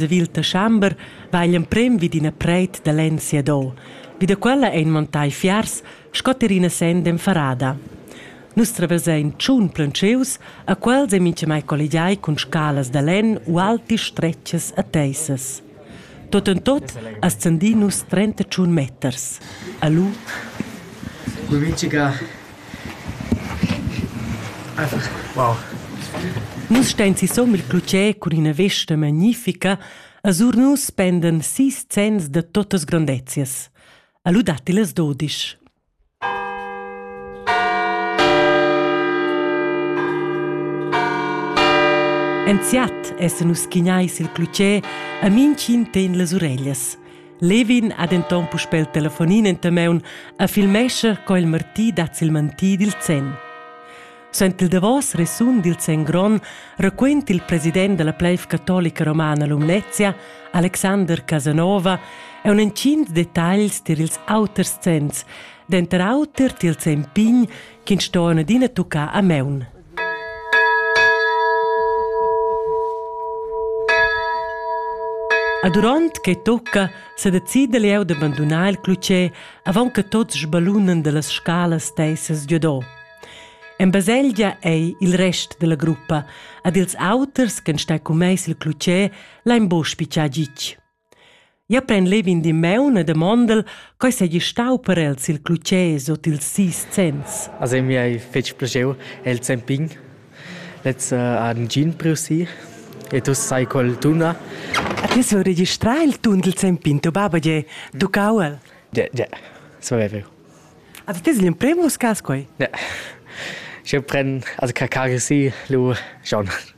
Sevil december va igl emprem vid ina preit da lenn siadò. Vi da quella ein montai fiars sco ter ina senda enfarada. Nus traversein tschun plantschius, a quels ei mintgamai colligiai cun scalas da lenn u alti stretgas a teissas. Tot en tot ascendin nus 31 meters. A lu. Cu mintga Nus stein sisum il clutger cun ina vesta magnifica e sur nus pendan sis zenns da tuttas grondezias. E lu datti las dodisch. Enziat essan nus schignai sil clutger e mintgin tegn las ureglias. Levin ha denton puspei il telefonin enta maun e filmescha co il Marti dat sil mantì dil zenn. Sent il davos resun dil zenn gron raquent il president della pleiv catolica romana Lumnezia, Alexander Casanova, e un encint detagls tier ils auters zenns, denter auter tiel zenn pign ch'ins ston adina tuccar a maun. E duront che tucca sedecida leu da bandunar il clutger avon che tots sbalunan dallas scalas teissas giudò. En baselgia ei il rest della gruppa ed ils auters che stai commess il clutger l'han buc spiccià gitg. Jeu pren levin d'in maun e demondel, co seigi stau per els il clutgès ord ils sis zenns. A se mi hai fetg plaschiu el zempin. Lez uh, ha in gin priu si e tu sai quel tuna. A ti sul registrar il tun dil zempin, tuo baba ge tuccau el? Ja, ja, so è vero. Avete ti l'imprem uscas quei? Ja. Ich pren, also kakari si, lu schon.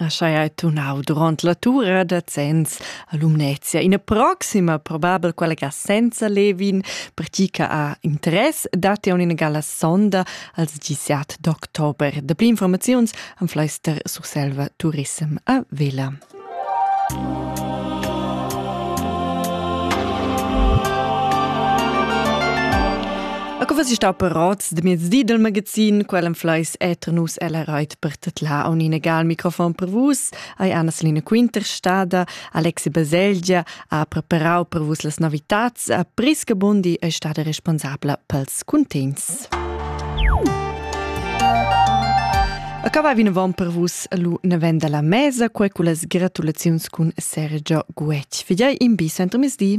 Aschai ei tunau duront la tura da zenns a Lumnezia. Ina proxima, probabel quella ga senza Levin, per ti che ha interess, datti ina gala sonda als 17 d'october. Da pli informaziuns am Fleister Surselva Turism a Vela. A co si sta apparats de miez di del magazin, quel en fleis eter nus ella reit per tetla a un inegal microfon per vus, ai Anna Selina Quinterstada, Alexi Baselgia ha preparau per vus las novitats a Prisca Bundi è stata responsabla pels contents. Acaba vinavon per vus lu navenda la mesa, quel cu las gratulaziuns cun Sergio Guetg. Fidei in bis entro misdi.